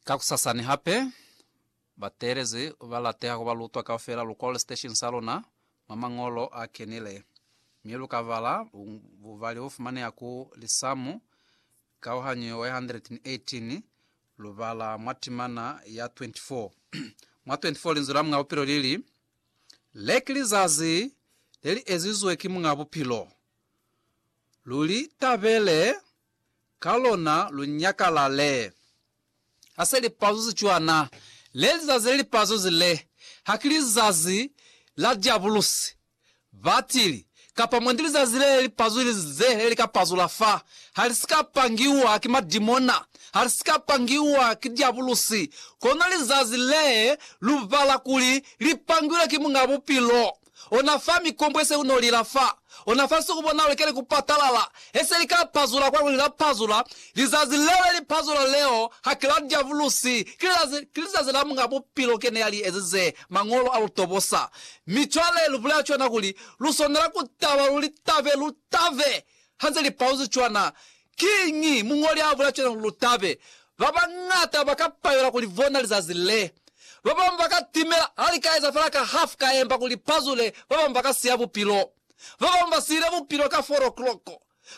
Kakusasani hape, bateelezi ba lateha ku ba lutwa kaufela lu kole siteshini sa luna mwa mañolo a kenile, mi lu ka bala bubali bo fumaneha ku Lisamu kauhanyo 118, lu bala mwa timana ya 24. Mwa 24 Linzwi la Muñ'a Bupilo li li, Le ki lizazi le li ezizwe ki Muñ'a Bupilo. Lu li tabele ka lona lu nyakalale. Ha se lipazuzi cwana, le lizazi le lipazuzi le, haki lizazi la Diabulusi, batili, kapa mwendi lizazi le li pazuzi ze le li ka pazula fa, ha li si ka pangiwa ki madimona, ha li si ka pangiwa ki Diabulusi, kono lizazi le lu bala kuli li pangilwe ki Muñ'a Bupilo. ona fa mikombo ye se ku no lila fa ona fa nsuku bona ulekele ku patalala, he se li ka pazula kwa kuli la pazula, lizazi leo le li pazula leo ha ki la Diabulusi, ki lizazi, ki lizazi la Muñ'a Bupilo ke ne ya li ezize, Mañolo a lu tobosa. Mi cwale lu bulela cwana kuli lu swanela ku taba, lu li tabe, lu tabe, ha nze li paluzi cwana, Kiñi muñoli a bulela cwale kuli lu tabe? Ba bañata ba ka palela ku li bona lizazi le. Ba bañwi ba ka timela ha li ka eza fela ka hafu ka emba kuli pa zule, ba bañwi ba ka siya bupilo. Ba bañwi ba siile bupilo ka four o'clock.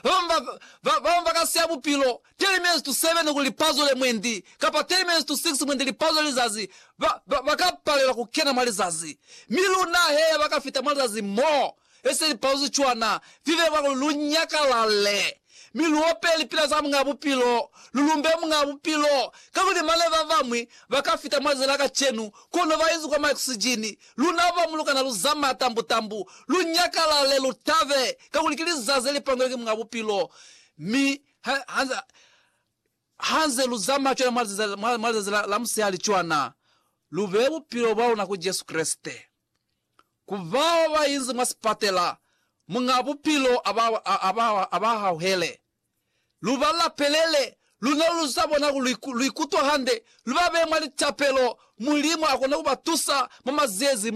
Ba bañwi ba, ba, ba bañwi ba ka siya bupilo ten minutes to seven kuli pa zule mwendi, kapa ten minutes to six mwendi li pazule lizazi. Ba, ba, ba ka palela ku kena mwa lizazi. Mi luna he ya ba ka fita mwa lizazi moo. Ese lipalo ze cwana, vive vwalo lu nyakalale, mi lu ope lipila za Muñaa Bupilo, lu lumbe Muñaa Bupilo, kakuli mane ba bañwi ba ka fita mwa zila kacenu, kono ba inzi kwa maoksijini, luna ba mulukana lu zamaa tambu-tambu. Lu nyakalale, lu tabe, kakuli ki lizazi le li pangilwe ki Muñaa Bupilo. Mi ha, ha, ha nze lu zamaa cwana mwa lizazi, mwa, mwa lizazi la, la musihali cwana, lu behe bupilo bwa luna ku Jesu Kreste. Ku bao ba inzi mwa sipatela, Muñ'a Bupilo a ba hauhele. Lu ba lapelele, luna lu z'a bona kuli lu ikutwa hande, lu ba beye mwa litapelo. Mulimu a kona ku ba tusa mwa liziezi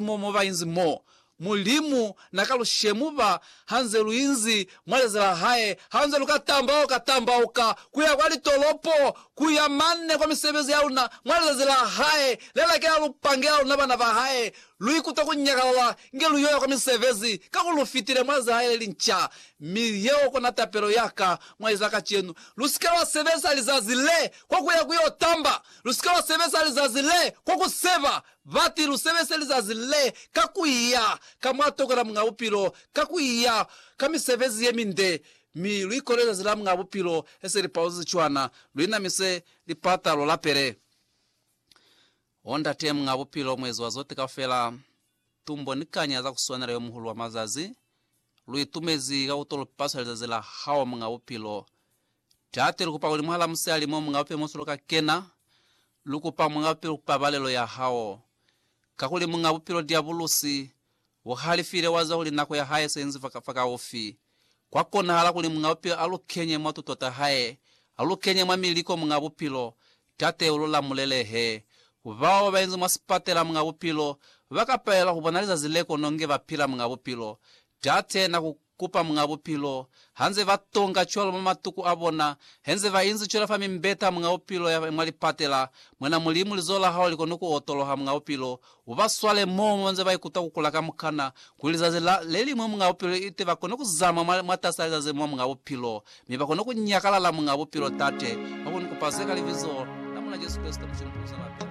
mo ba inzi mo. Mulimu na ka lu shemuba ha nze lu inzi mwa leza la hae, ha nze lu ka tambauka tambauka ku ya kwa litolopo, ku ya mane kwa misebezi ya luna mwa lizazi la hae le la kela lu pangela luna bana ba hae. Lu ikuta ku nyakalala inge lu yo ya kwa misebezi, kakuli lu fitile mwa leza la hae le linca. Mi yeo kona tapelo ya ka mwa lizazi la kacenu, Lu si ke lwa sebeza lizazi le kwa ku ya ku yo tamba, lu si ke lwa sebeza lizazi le kwa ku seba Bati, Lu sebese lizazi le ka ku iya ka mwa toko la Muñ'a Bupilo, ka ku iya ka misebezi ye minde, mi lu ikole lizazi la Muñ'a Bupilo he se li pauzezi cwana, lu inamise lipata, lu lapele. O Ndate Muñ'a Bupilo, Muezi wa zote kaufela, tumbo ni kanya za ku swanela Yo Muhulu wa mazazi, lu itumezi ka ku to lu paswa lizazi la Hao, Muñ'a Bupilo. Tate, lu kupa kuli mwahal'a musali mo, Muñ'a Bupilo, mo si lo ka kena, Lu kupa Muñ'a Bupilo pabalelo ya hao, kakuli Muñ'a Bupilo Diabulusi u halifile wa zwa kuli nako ya hae se inzi fakaufi. Kwa konahala kuli Muñ'a Bupilo a lu kenye mwa tuto ta hae, a lu kenye mwa miliko Muñ'a Bupilo, Tate u lu lamulele he. Bao ba inzi mwa sipatela Muñ'a Bupilo ba ka palelwa ku bona lizazi le kono nge ba pila Muñ'a Bupilo. Tate na ku kupa Muñ'a Bupilo, hanze ba tonga cwalo mwa matuku a bona, henze ba inzi cwela fa mimbeta ya Muñ'a Bupilo ya mwa lipatela, Mwena Mulimu, lizoho la Hao li koni ku otoloha, Muñ'a Bupilo, u ba swale moo mo ba nze ba ikuta ku kula kamukana, kuli lizazi la, le liñwi, Muñ'a Bupilo, ite ba koni ku zama mwa, mwatasi a lizazi mo, Muñ'a Bupilo, mi ba koni ku nyakalala, Muñ'a Bupilo, Tate, ba koni ku pa ze ka Libizo la Mulena Jesu Kreste, Muculu Mupuzuta Lapela.